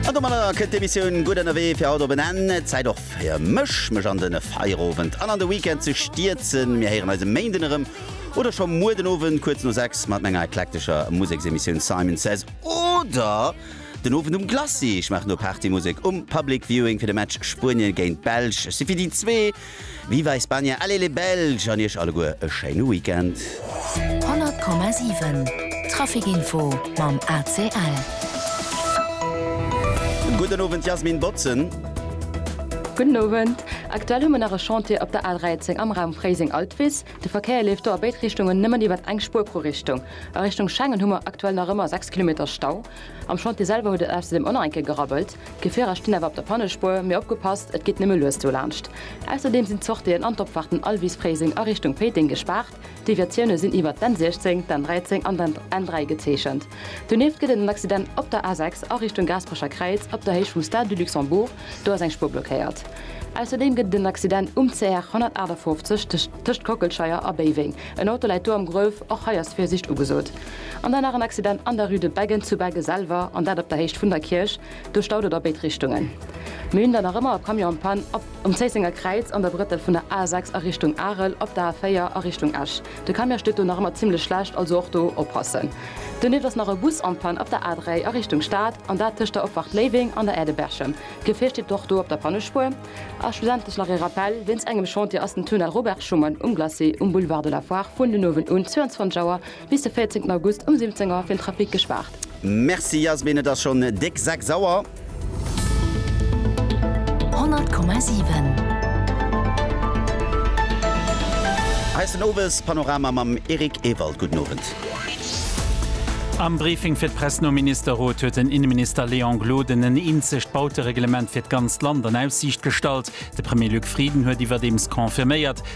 An domadder kënnt d'Emissioun Gutt ënnerwee fir haut op en Enn. Zäit och fir mech, mech an den Feierowend an an de Weekend ze stierzen. Mir héieren eis e Méinden erëm oder scho muer den Owend kuerz no 6 mat menger eklektescher Museksemissioun Simon Says oder den Owend um Glacis. Ech maachen do Partymusek um Public Viewing fir de Match Spuenien géint d'Belsch. Ech si fir déi zwee. Viva España, allez les Belges an iech alleguer e schéine Weekend. 100,7 Traficinfo mam ACL. Gudden Owend Jasmin Botzen. Gudden Owend. Aktuell hu mir nach e Chantier op der A 13 am Raum Fréiseng-Altwis. De Verkéier leeft do a béid Richtungen nëmmen iwwert eng Spuer pro Richtung. A Richtung Schengen hu mer aktuell nach ëmmer 6 Kilometer Stau. Am Chantier selwer huet et ausserdeem och nach eng Kéier gerabbelt. D'Gefierer stinn awer op der Pannespuer, mee opgepasst, et geet nëmme lues dolaanscht. Ausserdeem sinn d'Sortien an d'Opfaarten Alwisfréiseng a Richtung Péiteng gespaart. D'Deviatioune sinn iwwer d'N 16, d'N 13 an d'N 3 gezeechent. Donieft gëtt et en Accident op der A 6 a Richtung Gaasperecher Kräiz op der Héicht vum Stade du Luxembourg, do ass eng Spuer blockéiert. Ausserdeem gëtt et en Accident um CR 158 tëscht Kockelscheier a Béiweng, en Auto läit do am Gruef, och hei ass Virsiicht ugesot. An dann nach en Accident an der Rue de Beggen zu Begge selwer, an dat op der Héicht vun der Kierch. Do staut et a béid Richtungen. Mir hunn dann nach ëmmer e Camion en panne op um Zéissenger Kräiz an der Brëttel vun der A6 a Richtung Arel op der A4 a Richtung Esch. De Camion steet do nach ëmmer zimmlech schlecht, also och do oppassen. Donieft ass nach e Bus en panne op der A3 a Richtung Stad, an dat tëscht der Opfahrt Léiweng an der Aire de Berchem. D'Gefier steet och do op der Pannespuer. A schlussendlech nach ee Rappel, Wéinst engem Chantier ass den Tunnel Robert Schuman um Glacis um Boulevard de la Foire vun den Owend un 22 Auer Bis de 14 August um 17 Auer fir den Trafic gespaart. Merci Jasmin, et ass schon déck 6 Auer. 100,7. Hei ass den Owes Panorama mam Eric Ewald. Gudden Owend. Am Briefing fir d'Press nom Ministerrot huet den Inneminister Léon Gloden en eenzegt Bautereglement fir d'ganzt Land an Aussiicht gestallt. De Premier Luc Frieden huet iwwerdeems confirméiert,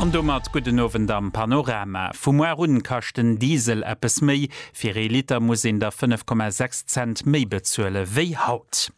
An domat gudden Owend am Panorama. Vu muar un kascht den Diesel eppes méi, fir ee Liter muss een der 5,6 Cent méi bezuele wéi haut.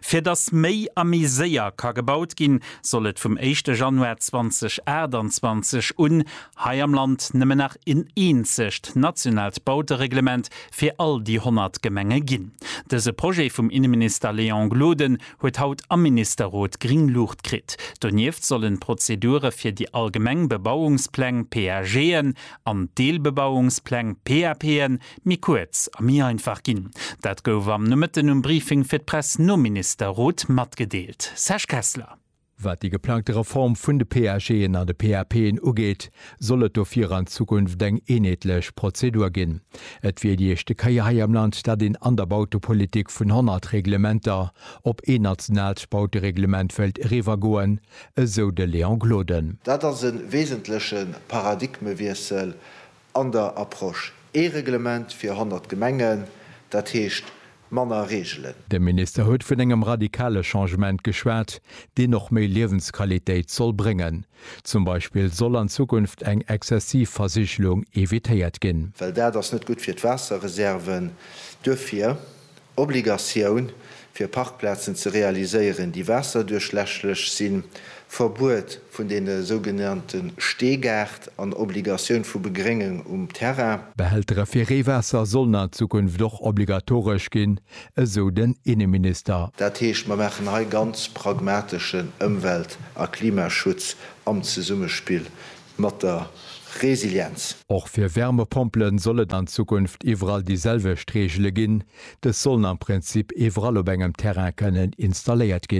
Fir datt méi a méi séier ka gebaut ginn, soll et vum éischte Januar 2028 un hei am Land nëmmen nach en eenzegt nationaalt Bautereglement fir all déi 100 Gemenge ginn. Dëse Projet vum Inneminister Léon Gloden huet haut am Ministerrot gring Luucht kritt. Donieft sollen d'Prozedure fir déi allgemeng Bebauungspläng, PAGen, an d'Deelbebauungspläng, PAPen, méi kuerz a méi einfach ginn. Dat gouf am Nomëtten um Briefing fir d'Press nom Ministerrot matgedeelt. Serge Kessler. Wat déi geplangte Reform vun de PAGen an de PAPen ugeet, soll et dofir an Zukunft eng eenheetlech Prozedur ginn. Et wier déi éischte Kéier hei am Land, dat een an der Bautepolitik vun 100 Reglementer op een nationaalt Bautereglement wéilt eriwwergoen, esou de Léon Gloden. Dat ass e wesentleche Paradigmewiessel An der Approche ee Reglement fir 100 Gemengen, dat heescht manner Reegelen. De Minister huet vun engem radikale Changement geschwat, deen och méi Liewensqualitéit soll bréngen. Zum Beispill soll an Zukunft eng exzessiv Versigelung evitéiert ginn. Well dat ass net gutt fir d'Waasserreserven. Duerfir. Obligatioun, fir Parkplazen ze realiséieren, déi waasserduerchläschlech sinn, Verbuet vun deene sougenannte Steegaart an Obligatioun vu Begréngung um Terrain. Behältere fir Reewaasser sollen an Zukunft och obligatoresch ginn, esou den Inneminister. Dat heescht, mer maachen hei ganz pragmateschen Ëmwelt a Klimaschutz am Zesummespill mat der Resilienz. Och fir Wärmepompele soll et an Zukunft iwwerall déi selwecht Reegele ginn. Dës sollen am Prinzip iwwerall op engem Terrain kënnen installéiert ginn.